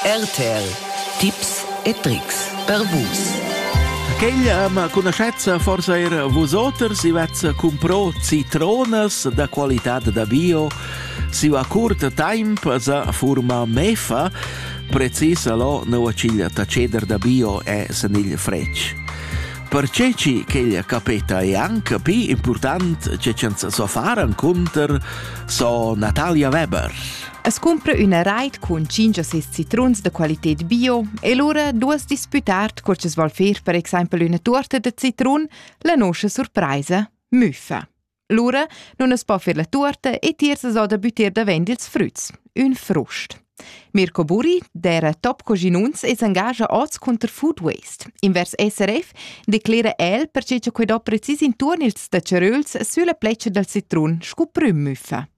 RTL Tipps e Tricks per Vus. Quella ma conoscezza forse era vosoters, i vezza comprò citronas da qualità da bio, si va curt temp za forma mefa, precisa lo nauaciglia taceder da bio e sanigl fretg. Perché ci quella capeta è anche più important che ci so fare un conter so Natalia Weber. As cumpra üna rait cun tschinch o seis citruns da qualited bio e lura duos disputar cur chi's voul fer per exaimpel üna tuorta da citrun, la noscha surpraisa müffa. Lura nun as po fer la tuorta e tiers as ho da büttir davent ils früts, ün frust. Mirko Buri, der Top Coginuns, es engagia oz cunter Food Waste. Invers SRF declera el perche cha quai do precis intuorn ils tacceröls sülla pletscha dal citrun scu prüm müffa.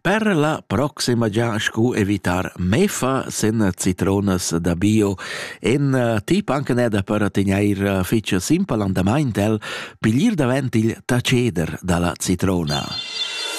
Per la proxima gia scu evitar mefa sen citronas da bio en eh, tip anche neda per tegneir eh, fitch simpel andamaint el piglier davent il taceder dalla citrona.